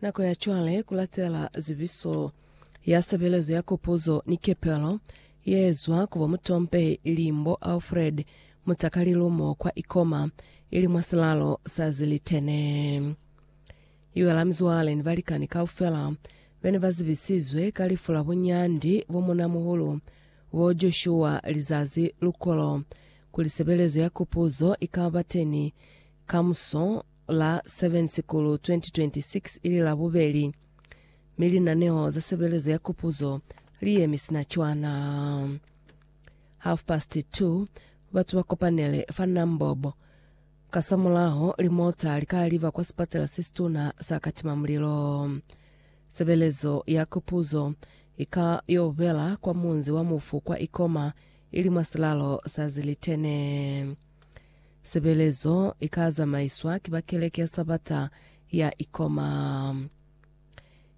Nako ya cwale kulatela zibiso ya sebelezo ya kopuzo ni kepelo yeezwa kubo mutompehi ilimbo Alfred Mutakalilumo kwa Ikoma ili mwa silalo sa Zilitene. Iwe la mizwale ni balikani kaufela bene bazibisizwe ka lifu la bunyandi bo munamuhulu bo Joshua lizazi lukolo kuli sebelezo ya kopuzo ikaba teni kamuso la 7 Sikulu 2026 ili Labubeli, mi linaneho za sebelezo ya kupuzo li yemi sina cwana. Half past 2, batu ba kopanele fa Nambob. Kasamulaho, limota li ka liba kwa sipatela se situna sa Katima Mulilo. Sebelezo ya kupuzo i ka yo bela kwa munzi wa mufu kwa Ikoma, ili mwa silalo sa Zilitene. Sebelezo i ka zamaiswa ki ba Keleke ya Sabata ya Ikoma.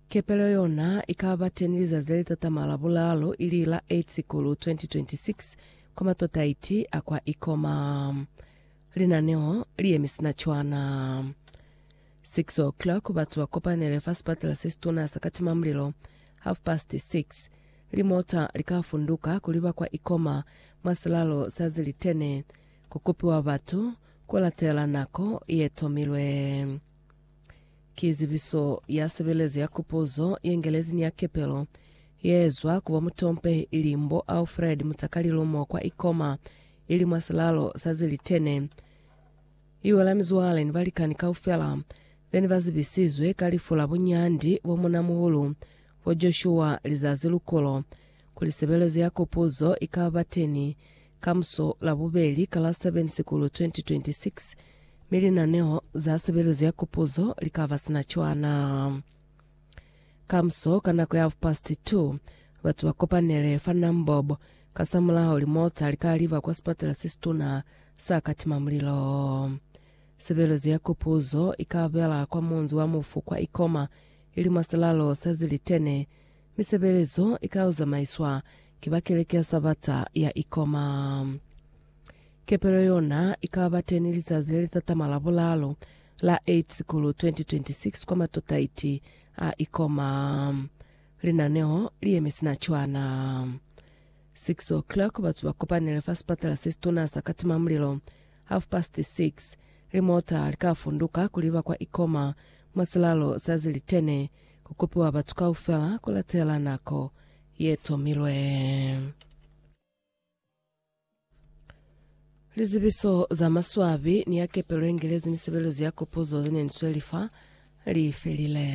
Kepelo yona i ka ba teni lizazi le litatama la bulaalu ili la 8 Sikulu 2026 kwa matotaiti a kwa Ikoma. Linaneo li yemi sina cwana. 6 o'clock batu ba kopanele fa sipatela se situna sa Katimamulilo, half past 6. Limota li ka funduka kuli ba kwa ikoma mwa silalo sa zilitene, ku kupiwa batu ku latela nako ye tomilwe. Ki zibiso ya sebelezo ya kupuzo ye ngelezi ni ya kepelo ye ezwa ku bomutompehi ili mbo Alfred Mutakalilu mo kwa ikoma ili mwa silalo sa zilitene. I wela mizwale ni balikani kaufela be ne ba zibisizwe ka lifu la bunyandi bo munamuhulu Bo Joshua lizazi lukolo kuli sebelezo ya Kopuzo i ka ba teni kamuso Labubeli ka la 7 Sikulu 2026, mi linaneho za sebelezo ya Kopuzo li ka ba sina cwana. Kamuso ka nako ya half past two, batu ba kopanele fa Nambob, kasamulaho limota li ka liba kwa sipatela se situna sa Katima Mulilo. Sebelezo ya Kopuzo i ka bela kwa munzi wa mufu kwa Ikoma, ili mwa silalo sa zilitene, mi sebelezo ika zamaiiswa ki ba Keleke ya Sabata ya Ikoma. Kepelo yona ika ba teni lizazi le li tatama la bulaalu, la 8 Sikulu 2026 kwa matotaiti a Ikoma. Linaneo li yemi sina cwana. 6:00 batu ba kopanele fa sipatala se situna sa Katima Mulilo. Half past 6, limota li ka funduka kuli ba kwa Ikoma Mwa silalo sa zilitene, ku kopiwa batu kaufela ku latela nako ye tomilwe. Lizibiso za maswabi ni ya kepelo ye Ngelezi ni sebelezo ya kopuzo ze ne ni sweli fa li felile.